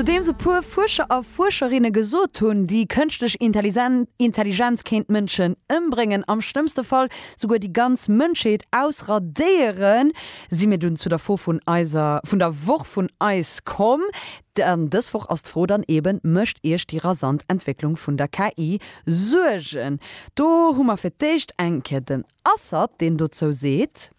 Nodeems e puer Fuerscher a Fuerscherinne gesot hunn, déi kënschtlech Intelligenz kéint d'Mënschen ëmbréngen, am schlëmmste Fall souguer déi ganz Mënschheet ausradéieren, si mir dunn zu der Fro vun eiser, vun der Woch vun eis komm. An dës Woch ass d'Fro dann eben, Mécht Iech déi rasant Entwécklung vun der KI Suergen? Do hu mer fir d'éischt eng Kéier den Assad, deen dozou seet.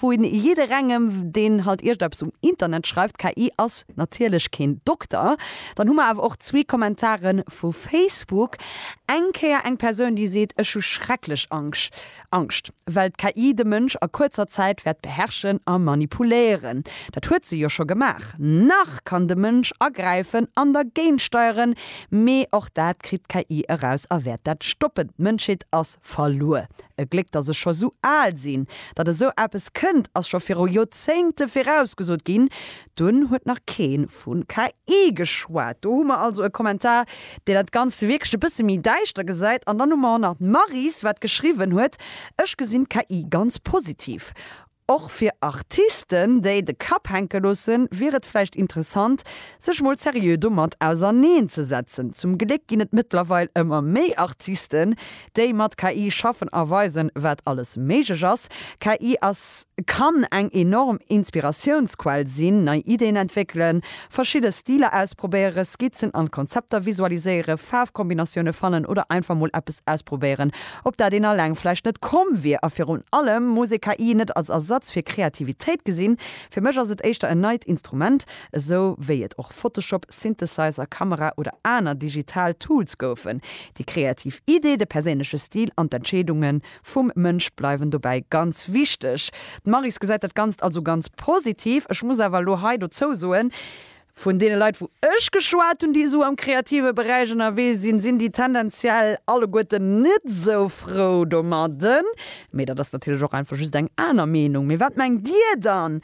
Vu jidderengem deen halt iergendeppes um Internet schreift, KI ass natierlech keen Dokter. Dann hu mer awer och zwee Kommentare vu Facebook. Eng Kéier eng Persoun déi seet, ech hu schrecklech Angscht, well d'KI de Mënsch a kuerzer Zäit wäert beherrschen a manipuléieren. Dat huet se jo scho gemaach. Nach kann de Mënsch agräifen an dergéint steieren, mee och dat kritt d'KI eraus a wäert dat stoppen. D'Mënschheet ass verluer. E Gléck datt ech scho sou al sinn. Datt esou eppes kënnt, ass scho viru Joerzéngte virausgesot ginn. Dunn huet nach kee vu KI geschwat. Do hu mer also e Kommentar, deen dat Ganzt wierklech e bësse méi däischter gesäit. An dann hu mer och nach d'Maryse, wat geschriwwen huet, Ech gesinn d'KI ganz positiv. Och fir Artisten, déi de Kapp hänke loossen, wier et vläicht interessant, sech mol seriö domat auserneenzesetzen. Zum Gléck ginn et mëttlerweil ëmmer méi Artisten, déi mat KI schaffen a weisen, wat alles méiglech ass. KI ass, kann eng enorm Inspiratiounsquell sinn, nei Ideen entwéckelen, verschidde Stiler ausprobéieren, Skizzen an Konzepter visualiséieren, Faarfkombinatioune fannen oder einfach mol eppes ausprobéieren, op dat een alleng vläicht net komm wier. A virun allem muss ee KI net als Ersatz fir Kreativitéit gesinn. Fir mech ass et éischter en neit Instrument, esou wéi et. Photoshop, Synthesizer, Kamera oder aner digital Tools goufen. Déi kreativ Idee, de perséinleche Stil an d'Entscheedunge vum Mënsch bleiwen dobäi ganz wichteg. D'Maryse gesäit dat Ganzt also ganz positiv. Ech muss awer elo hei dozou soen, Vun deene Leit, wou ech geschwat hunn, déi esou am kreative Beräich ënnerwee sinn, sinn déi tendenziell alleguerten net esou frou domadden. Mee dat ass natierlech och einfach just eng aner Meenung. Mee wat mengt Dir dann?